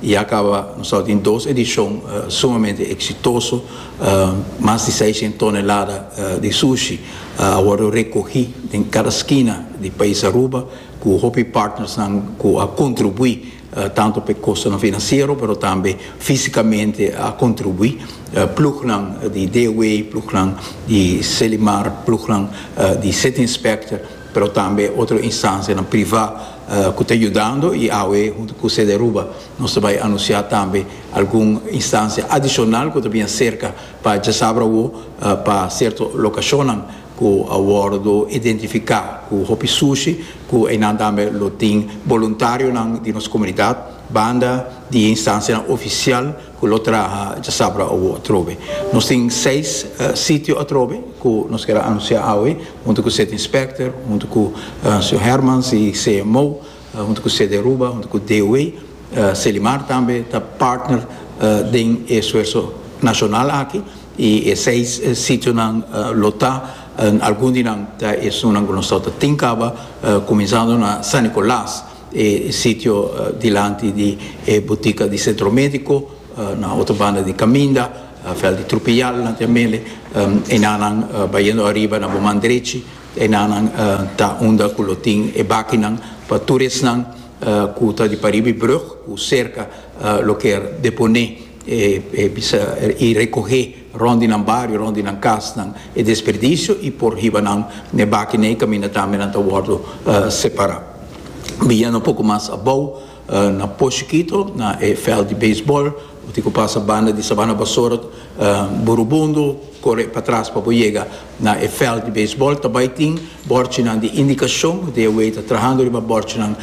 Y ya caba, nos al tin dos edicion sumamente exitoso, mas di seiscientos tonelada di sushi a wordo recogi den cada skina di pais Aruba cu hopi partnersnan cu a contribui tanto pa e costonan financiero pero tambe fisicamente a contribui, plugnan di DOA, plugnan di Selimar, plugnan di City Inspector. pero tambe otro instancianan priva cu ta yudando y awe hunto cu Sedearuba nos ta bay anuncia tambe algun instancia adicional cu ta bia cerca pa djasabra awo pa cierto locacionnan cu a wordo identifica cu hopi sushi cu eynan tambe lo tin boluntarionan di nos comunidad banda di e instancianan oficial Cu lo traha djasabra awo atrobe. Nos tin seis sitio atrobe cu nos ker a anuncia awe hunto cu City Inspector, hunto cu Sr. Hermans y CMO, hunto cu CD Aruba, hunto cu DOA. Celimar tambe ta partner den e suerso nacional aki y e seis sitionan lo ta. Algun di nan ta esunnan cu nos tawata tin caba, cuminzando na San Nicolas. E sitio dilanti di e butica di Centro Medico, na otro banda di caminda, Veld di Trupial, dilanti e mele. Enanan bayendo ariba na bo man drechi, enanan ta unda cu lo tin e bakinan pa tur esnan cu ta di pariba e brug, cu cerca loke a deponé y recohé. Rond di nan bario, rond di nan casnan e desperdicio y por hiba nan n'e baki n'ey camina tambe nan ta wordo separa. Biyendo un poco mas abou na Poshi Kito na e veld di baseball bo tin cu pasa banda di Sabana Bassort Burubundo core pa tras pa bo yega na e veld di baseball ta bay tin bordjenan di indicacion bo dia wey ta trahando riba bordjenan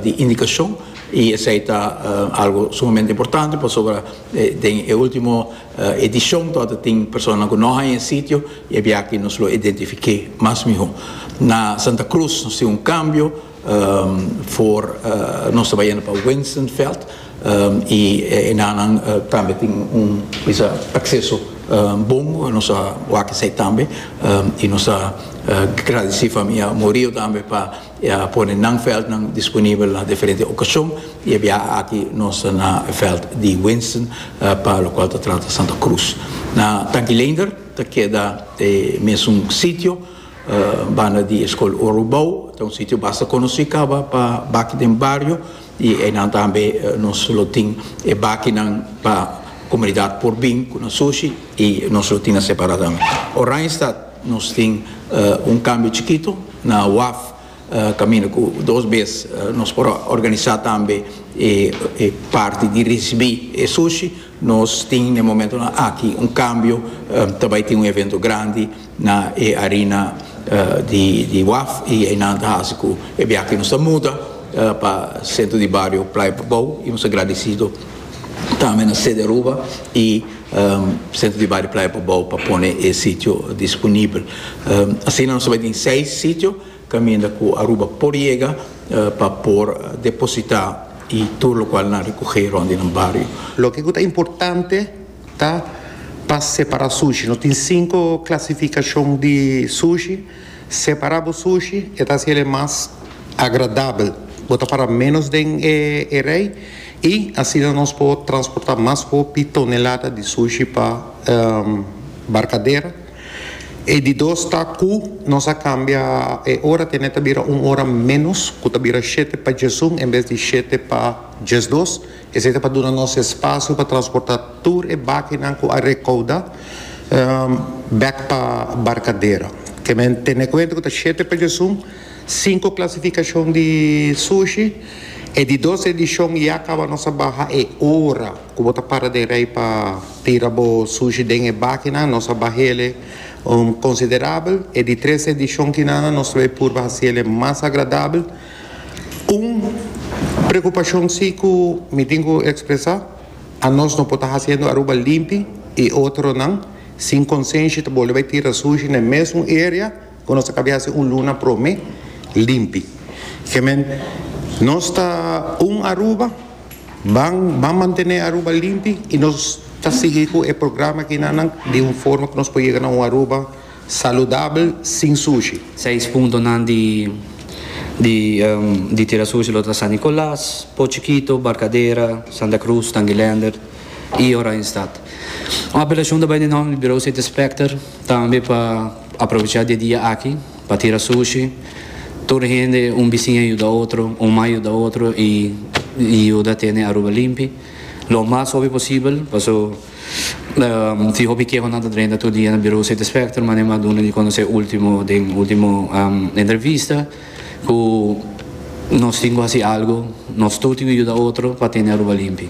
di indicacion y esey ta algo sumamente importante pasobra den e ultimo E dishon to ta tin personanan ku no haña e sitio i e biakié nos lo identifiké mas mihó. Na Santa Cruz nos tin un kambio for nos ta bai yenda pa Wensenfeld i e nannan tambe tin un bisa akseso bon ku nos a wak esei tambe i nos ta gradisí famia Murillo tambe pa E a pone nan veldnan disponibel na diferente okashon i e biaha aki nos ta na e veld di Winston pa lokual ta trata Santa Cruz. Na Tankilander ta keda e mesun sitio banda di e skol Orubou, ta un sitio basta konosí kaba pa baki den bario i einan tambe nos lo tin e bakinan pa komunidat por bin ku na sushi i nos lo tin nan separá tambe. Oranjestad. Nos tin un kambio chikito na waf kaminda ku dos bes nos por a organisá tambe e parti di risibí e sushi. Nos tin na e momentunan aki un kambio, ta bai tin un evento grandi na e arina di waf i einan ta hasi ku e biaha nos ta muda pa sentro di bario Playa Bobou i nos ta gradisido tambe na CDRUBA i Sentro di Bario Playa Pobou pa pone e sitio disponibel. Asina nos ta bai tin seis sitio caminda cu Aruba por yega pa por deposita y tur locual nan recoge rond di nan bario. Loke cu ta importante ta pa separa sushi. Nos tin cinco clasificacion di sushi. Separa bo sushi, e ta hasi el'e mas agradabel. Bo ta para menos den e rei y asina nos por transporta mas hopi tonelada di sushi pa barcadera. E di dos ta cu nos a cambia e ora tene ta bira un ora menos cu ta bira shete pa djesun en bes di shete pa djesdos. Esei ta pa duna nos espasio pa transporta tur e bakinan ku a rekouda bek pa Barkadero. Kemen tene kuenta ku ta shete pejesun, sinku klasifikashon di sushi, e di dos edishon ya kaba nos a baha e ora ku bo ta para den rei pa tira bo sushi den e bakinan, nos a baha ele konsiderabel. E di tres edishon kinan nos lo e purba hasi ele mas agradabel. Un preocupacion si cu mi tin cu expresa, a nos no por ta haciendo Aruba limpi y otronan sin consenshi ta boli bay tira sushi n'e mesun area cu nos a cabia haci un luna prome limpi. Kiemen nos ta un Aruba, ban ban mantene Aruba limpi y nos ta sigui cu e programa akinanan di un forma cu nos por yega na un Aruba. Saludabel sin sushi. Seis puntonan di di tira sushi lo ta San Nicolas, Po Chiquito, Barcadera, Santa Cruz, Tanguilender y Oranjestad. Un apelacion ta bai di nomber di Bureau City Specter tambe pa aprovecha di e dia aki pa tira sushi. Tur hende, un bisiña yuda otro, un mai yuda otro y yuda tene Aruba limpi lo mas hopi posibel paso. Si hopi kehonan ta drenta tur dia na Birou Sete Specter, mane mas duna di conoce ultimo den ultimo entrevista cu nos tin cu haci algo, nos tur tin cu yuda otro pa tene Aruba limpi.